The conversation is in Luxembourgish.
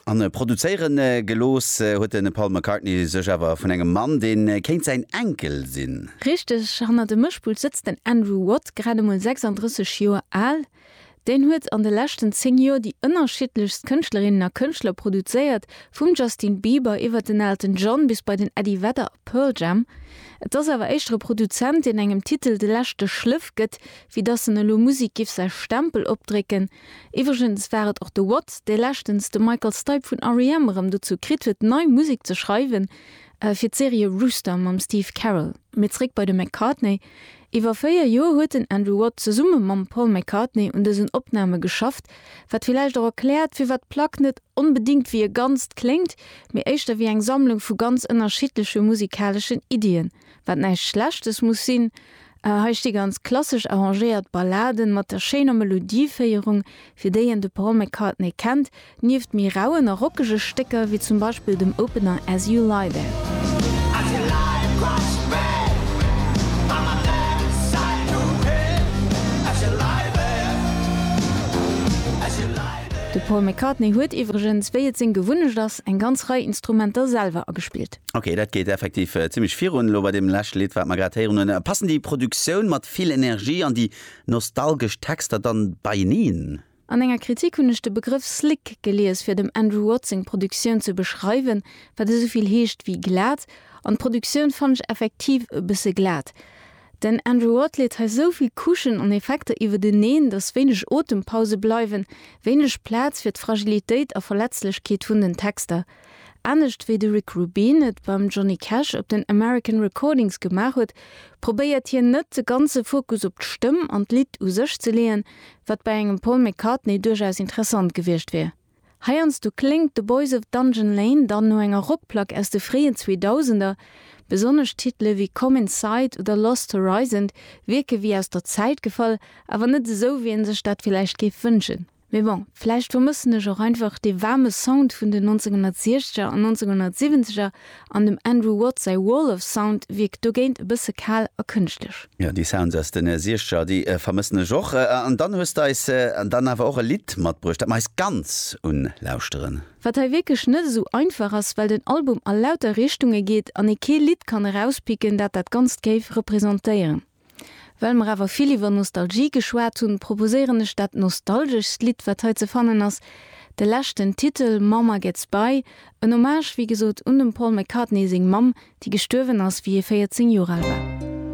An produzéiere gelooss huet de Paul McCartney sech awer vun engem Mann, dee kéint säin Enkel sinn. Richteg, hanner dem Mëschpult sëtzt den Andrew Watt, grad emol 36 Joer al. Deen huet an de leschten 10 Joer déi ënnerschiddlechst Kënschtlerinnen a Kënschtler produzéiert, vum Justin Bieber iwwert den Elton John bis bei den Eddie Vedder a Pearl Jam. Et ass awer éischter e Produzent, deen engem Titel de leschte Schléff gëtt, wéi dass en elo Musek giff säi Stempel opdrécken. Iwwregens war et och de Watt, dee leschtens de Michael Stipe vun REM erëm dozou kritt huet, nei Musek ze schreiwen fir d'Serie Rooster mam Steve Carell. Mee zréck bei de McCartney. Iwwer véier Joer huet den Andrew Watt zesumme mam Paul McCartney un dësen Opname geschafft, wat villäicht och erkläert, firwat d'Plack net onbedéngt wéi e Ganzt kléngt, mee éischter wéi eng Sammlung vu ganz ënnerschiddleche musikaleschen Iddien. wat näischt Schlechtes muss sinn. Hei sti ganz klassesch arrangéiert Balladen mat der schéiner Melodieféierung, fir déi een de Paul McCartney kennt, nieft méi rauen a rockege Stécker, wéi zum Beispill dem Opener As You Lie There. De Paul McCartney huet iwwregens, wéi et seng Gewunnecht ass, eng ganz Rei Instrumenter selwer agespillt. Ok, dat geet effektiv zimlech virun elo bei deem leschte Lidd, wat mer grad héieren hunn. Passen déi Produktioun mat vill Energie an déi nostalgesch Texter dann beieneen? An enger Kritik hunn ech de Begrëff slick gelies fir dem Andrew Watt seng Produktioun ze beschreiwen, wat esouvill heescht wéi glat, an d'Produktioun fannen ech effektiv e bësse glat. Den Andrew Watt leet hei souvill Couchen an Effekter iwwerteneen, datt wéineg Otempause bleiwen, wéineg Plaz fir d'Fragilitéit a Verletzlechkeet vun den Texter. Anescht wéi de Rick Rubin et beim Johnny Cash op den American Recordings gemaach huet, probéiert hien net de ganze Fokus op d'Stëmm an d'Lidd u sech ze leeën, wat bei engem Paul McCartney duerchaus interessant gewiescht wier. Heiansdo kléngt The Boys of Dungeon Lane dann no enger Rockplack aus de fréien Zweedausender, besonnesch Titele wéi Come Inside oder Lost Horizon wierke wéi aus der Zäit gefall, awer net esou, wéi ee sech dat villäicht géif wënschen. Mee bon, vläicht vermëssen ech och einfach dee waarme Sound vun den 1960er an 1970er, an dem Andrew Watt säi Wall of Sound wierkt dogéint e bësse kal a kënschtlech. Jo, déi Sounds aus den Siechzeger, déi vermëssen ech och. An dann hues de eis dann awer och e Lidd matbruecht, dat mer eis ganz un lauschteren. Wat hei wierklech net esou einfach ass, well den Album a lauter Richtunge geet an ee kee Lidd kann erauspicken, dat dat Ganzt géif representéieren. Well mer awer vill iwwer Nostalgie geschwat hunn, proposéieren ech dat nostalgeschst Lidd, wat hei ze fannen ass, de leschten Titel Mama Gets By, en Hommage, wéi gesot, un dem Paul McCartney seng Mamm, déi gestuerwen ass, wéi hie 14 Joer al war.